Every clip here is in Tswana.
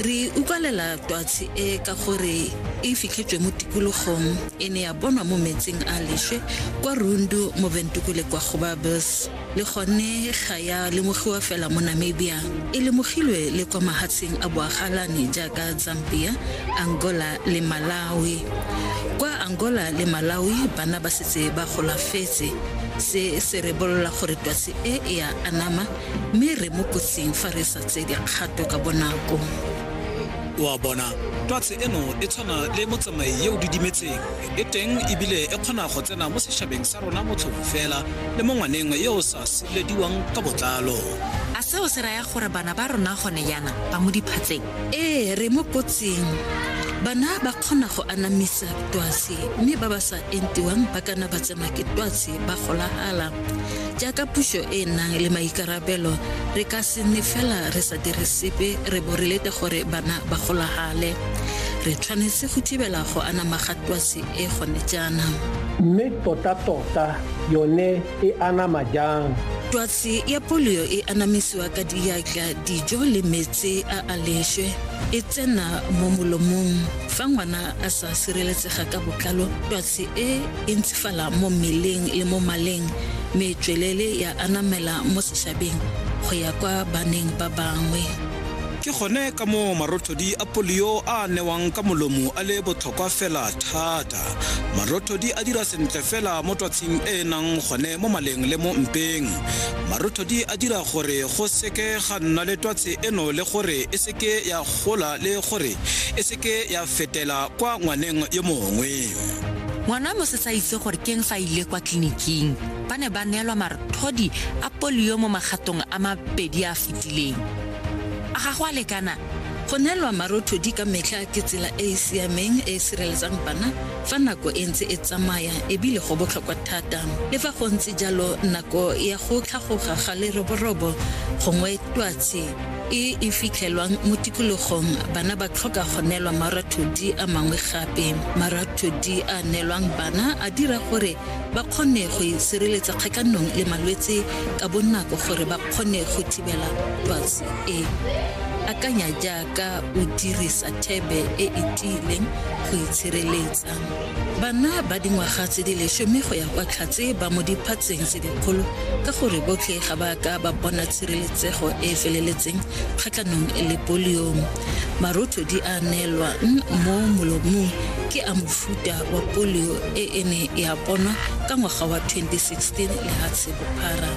re utlwalela twatshi e ka gore e fitlhetswe mo tikologong e ne ya bonwa mo metsing a leswe kwa rundu mo bentukule kwa gobabes le gone ga ya lemogiwa fela mo namibia e lemogilwe le kwa mahatsheng a boagalane jaaka zambia angola le malawi kwa angola le malawi bana ba setse ba golafetse se se rebolola gore twatsi e e a anama mme re mo kotsing fa re sa tse dikgato ka bonako wa bona twatsi eno e tshwana le motsamai yo o didimetseng e teng ebile e kgona go tsena mo setšhabeng sa rona motlhofu fela le mo ngwaneng yo o sa sirelediwang ka botlalo a seo se raya gore bana ba rona gone yana ba mo diphatseng ee re mo kotsing bana ba kgona go anamisa twatsi mme ba ba sa entiwang ba kana ba tsenwa ke twatsi ba golagala jaaka puso e e nang le maikarabelo re ka se nne fela re sa dire sepe re bo re lete gore bana ba golagale re tshwanetse go thibela go anama ga twasi e gone jaanang mme tota-tota yone e anama jang twatsi ya polio e anamisiwa ka diatla dijo le metsi a a leswe e tsena mo molomong fa ngwana a sa sireletsega ka botlalo Se e e ntshifala mo mmeleng le mo maleng me tswelele ya anamela mo seshabeng go ya kwa baneng ba bangwe. Ke gone ka moo marothodi a polio a newang ka molomo a le botlhokwa fela thata. Marothodi a dira sentle fela mo twatshing e e nang gone mo maleng le mo mpeng. Marothodi a dira gore go seke ga nna le twatse eno le gore e seke ya gola le gore e ke ya fetela kwa ngwaneng yo mongwe. Ngwana wa mosesa a itse gore keng fa ile kwa tleliniking ba ne ba neelwa marthodi a polio mo magatong a mabedi a fetileng. A ga go a lekana? Go neelwa marothodi ka metlha ke tsela e e siameng e e sireletsang bana fa nako e ntse e tsamaya ebile go botlhokwa thata. Le fa go ntse jalo nako ya go tlhagoga ga leroborobo gongwe twatshi e e fitlhelwang mo tikologong bana ba tlhoka go neelwa marathodi a mangwe gape marathodi a neelwang bana a dira gore ba kgone go sireletsa kgakanong le malwetse ka bonako gore ba kgone go thibela twatsi e akanya jaaka o dirisa thebe e e tiileng go itshireletsa Tlang. Bana ba dingwaga tse di lesome go ya kwa tlhatse ba mo diphatseng tse dikgolo ka gore botlhe ga ba ka ba bona tshireletsego e e feleletseng kgatlhanong le polio. Marothodi a neelwang mo molomong ke a mofuta wa polio e e ne ya bonwa ka ngwaga wa 2016 lehatshe bophara.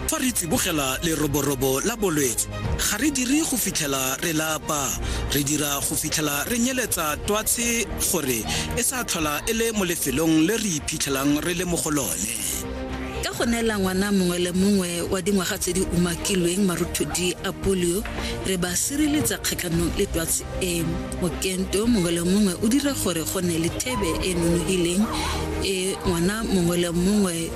Fa re tsibogela leroborobo la bolwetse Ga re dire go fitlhela re lapa, re dira go fitlhela re nyeletsa twatshi gore e sa tlhola e le mo lefelong le re iphitlhelang re le mo go lone. Ka go neela ngwana mongwe le mongwe wa dingwaga tse di umakilweng marothodi a polio, re ba sireletsa kgatlhanong le twatsi eno. Mokento mongwe le mongwe o dira gore go nne le thebe e e nonofileng e ngwana mongwe le mongwe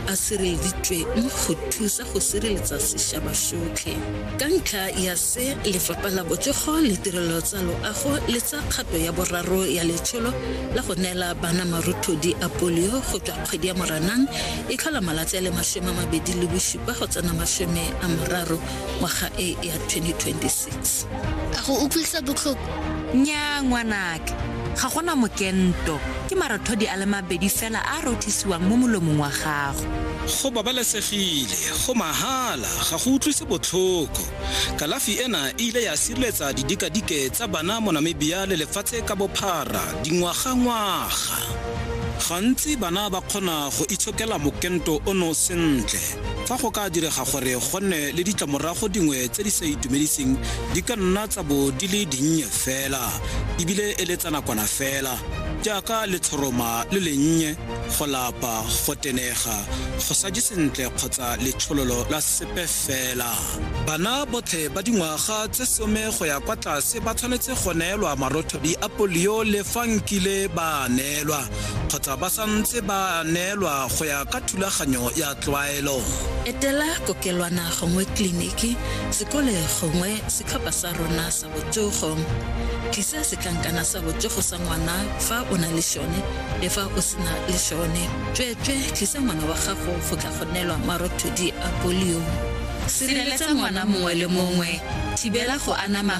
a sireleditsweng go thusa go sireletsa sešaba sotlhe ka ntlha ya se lefapha la botsogo le tirelo tsa loago le tsa kgato ya boraro ya letsholo la go neela bana maruthodi a polio go tswa kgwedi ya moranang e tlhola malatsi a le masome a mabedi le bosupa go tsena masome a moraro ngwaga e ya 2026 6 a go utlwisa botlhoko nnyaa ngwanake ga gona mokento ke marothodi a le mabedi fela a a rothisiwang mo molomong wa gago go babalesegile go mahala ga go utlwise botlhoko kalafi ena e ile ya sireletsa didikadike tsa bana mo namibia le lefatshe ka bophara dingwagangwaga gantsi bana ba kgona go itshokela mokento ono sentle Fa go ka direga gore go nne le ditlamorago dingwe tse di sa itumediseng, di ka nna tsa bo di le dinnye fela ebile e le tsa nakwana fela, jaaka letshoroma le lennye, go lapa, go tenega, go sa je sentle kgotsa letshololo la sepe fela. Bana botlhe ba dingwaga tse some go ya kwa tlase ba tshwanetse go neelwa marothodi a polio le fa nkile ba neelwa. kgotsa ba santse ba neelwa go ya ka thulaganyo ya tlwaelo etela kokelwana gongwe kliniki sekole gongwe setlhopha sa rona sa botsogo tlisa setlankana sa botsogo sa ngwana fa o na le sone le fa o sena le sone tsweetswe tlisa ngwana wa gago go tla go neelwa marothodi a polio sireletsa ngwana mongwe le mongwe thibela go anama